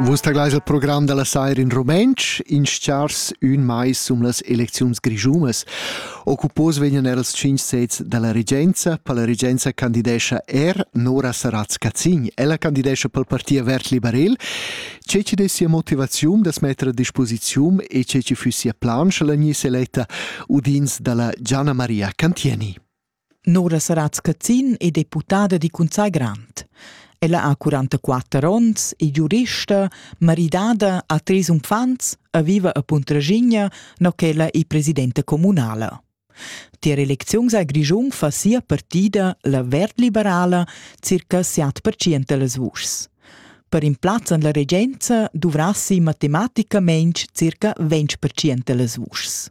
Vus taglais il program da la saira in rumentsch, in schars ün mais sum las elecziuns grischunas. Occupos vegnan er els tschinch sets da la regenza, per la regenza candidescha er Nora Saratz-Cazin. Ella candidescha pel parti Vert Liberel. Ce ci des sia motivaziun das metter a disposiziun e ce ci füss sia plan, sche la gnisse eletta udins da la Gianna Maria Cantieni. Nora Saratz Cazin è deputada di Cunzai Grant. Ella ha 44 onns, è giurista, maridada, ha tres unfants e viva a Puntraschigna, no ch'ella è presidenta comunala. Tier elecziuns a Grischun fa sia partida, la verd-liberala, circa 7% dals vuschs. Per in plaz en la regenza dovrassi matematicamente circa 20% dals vuschs.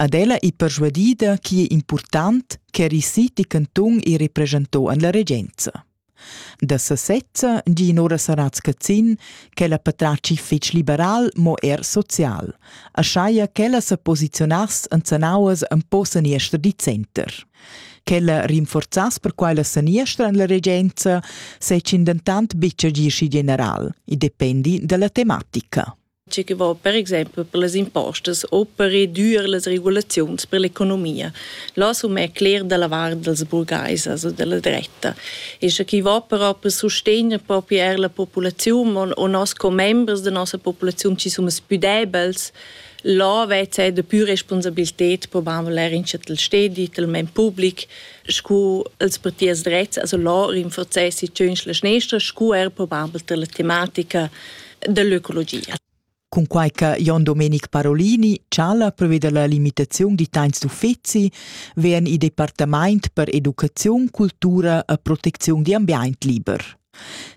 Ad ella ei perschuadida chi è important ch'eri siti cantun e representò an la regenza. Da sesezza gi Nora Saratz Cazin che la patratgi fetg liberal mo er social, a schaia ch'ella sa posizionass en sanauas en po saniester di center. Ch'ella rinforzass per quai la saniestra en la regenza se dentant bitg gi schi general, i dependi dalla tematica. tge che va per exempel per las impostas u per reducir las regulaziuns per l'economia. Là som è cler da la vart dels burgais, also della dretta. E sche chi va però per sostegner proprio er la populaziun o nos commembers da nossa populaziun ci sono più debels, là vezza da più responsabilität probabel er in chatel stedi, tal men public, scu els partiers drets, also là rinforzessi tschöns la schnestra, scu er probabel per la tematica dell'ecologia. Cunquai che Jon Domenic Parolini chala preveda la limitaziun di tains d'uffizi, vegn il departament per educaziun, cultura e proteziun di ambient liber.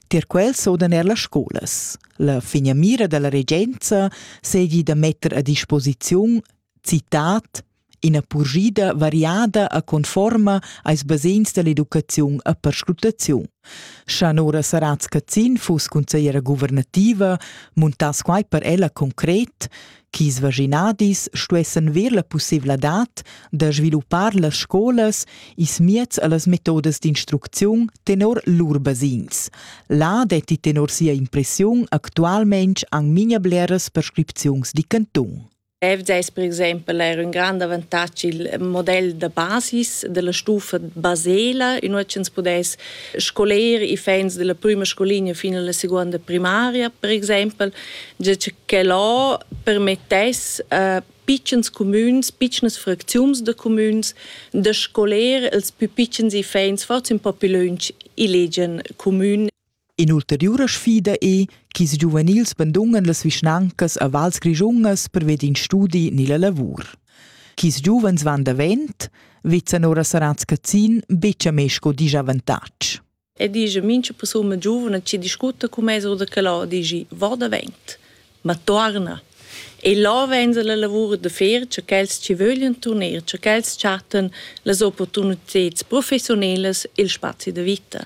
Tier quel sodan er las scolas. La finamira dalla regenza seigi da metter a disposiziun Citat ina purschida variada e conforma als basegns dall'educaziun e perscrutaziun. Scha Nora Saratz Cazin fuss consigliera guvernativa, muntass quai per ella concret, ch'is vaginadis stuessan ver la pussevladad da sviluppar las scolas ils mieds e las metodas d'instrucziun tenor lur basegns. Là detti tenor sia impressiun actualmain anc memia bleras prescripziuns di cantun. FDS per exempel era un grand avantatg il model da basis della stufa basela in ua ch'ins pudess scoler i fans della prima scolinea fin alla seconda primaria per exempel ge che là permettess a pitschens comüns, pitschnas fracziuns de comüns da scoler els più pitschens i fans forza un po più lunch i legian comün In'ulteriura sfida è ch'ils giuvenils bandungan las vischnancas a vals grischungas perved in studi ni la lavur. Ch'ils giuvens van davent, vezzan ora Saratz Cazin betg a me sco disavantatg. E dice, mincha persuna giovane ci discute con me oder che là, dici, va davent, ma torna. E là venz la lavur de fer, che quels ci vogliono tornare, che quels chatten las opportunità professionelas, il spazi de vita.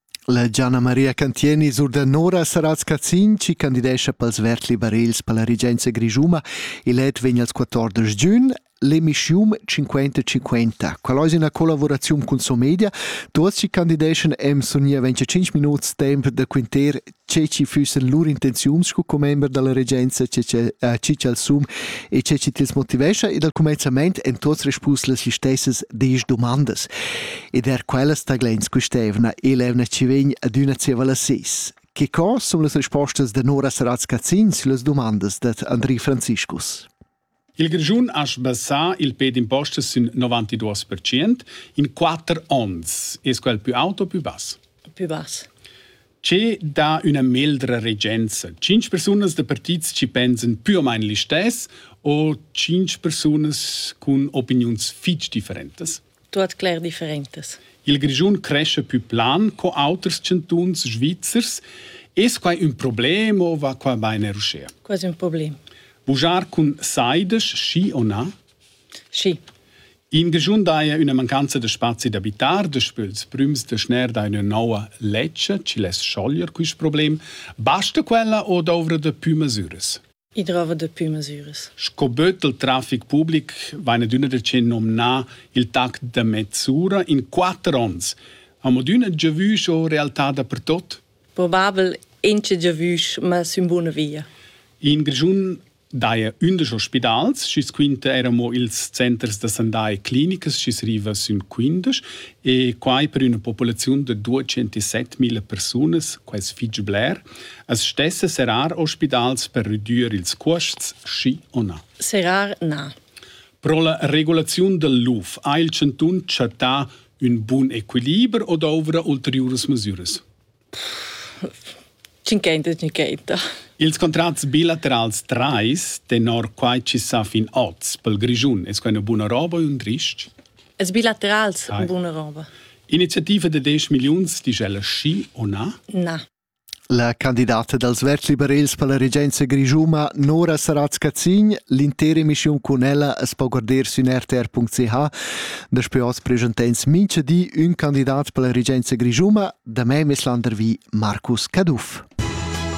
La Gianna Maria Cantieni surdanora Saratz Cazin chi candidescha pels verds liberels per la regenza grischuma. Il let vegn als 14 giun. L'emischium 50-50. Qual ais üna collavuraziun cun Somedia? Tuots chi candideschan am sun nia 25 minuts temp da quinter che ci fussen lur intenziuns sco commember dalla regenza che ci al sum e che ci tils motivescha ed al comenzament en tots respus las stessas des domandas ed er quellas taglens questevna e levna ci vegn adüna zieva la ses che co sun las respostas da Nora Saratz-Cazzin sulle domande da Andri Franziscus Il Grischun ha sbassà il pe d'impostas sün 92 percent in quatter ons. Es quel pü aut o pü bass? Pü bass. Che dà üna meldra regenza? Cinc persunas da partits ci pensan più o meno listess o cinc persunas cun opiniuns fich differentas? tuot cler differentas. Il Grischun cresce più plan co auters chantuns svizzers. Es quai ün problem o va qua bain er uschè? Quasi un problem. Bugiar cun saides, schi o na? Schi. In Grischun daja üna mancanza da spazi d'abitar, despöls prüms da schner da üna noua ledscha, chi less schoglier quist problem. Basta quella o douvra da pü masüras? I drova da pü masüras. Sco böt del trafic public vain adüna decent nomnà il tact da mezz'ura in quatter ons. Am adüna giavüsch o realtà dapertot? Probabel inche giavüsch, ma sün buna via. In Grischun daja ündesch ospidals, schi's quinta eir amo ils centers da sandà e clinicas, schi's riva sün quindesch, e quai per üna populaziun da 207.000 persunas, quai es fich bler. As stessa serrar ospidals per redüer ils cuosts, schi o na? Serrar na. Pro la regulaziun dal luf ha il chantun chattà ün bun equiliber o douvra ulteriuras masüras? Tschinchenta, tschinchenta. Ils contrats bilaterals trais, tenor quai chi sa fin oz pel Grischun, es quai üna buna roba o ün rich? Es bilaterals Hai. buna roba. Iniziativa da 10 milliuns, disch ella schi o na? Na. La candidata dals verds liberals per la regenza grischuna Nora Saratz-Cazin, l'intera emissiun cun ella es po guarder sün rtr.ch. Daspö hoz presenta'ns mincha di ün candidat per la regenza grischuna. Da me m'es landervi Marcus Caduff.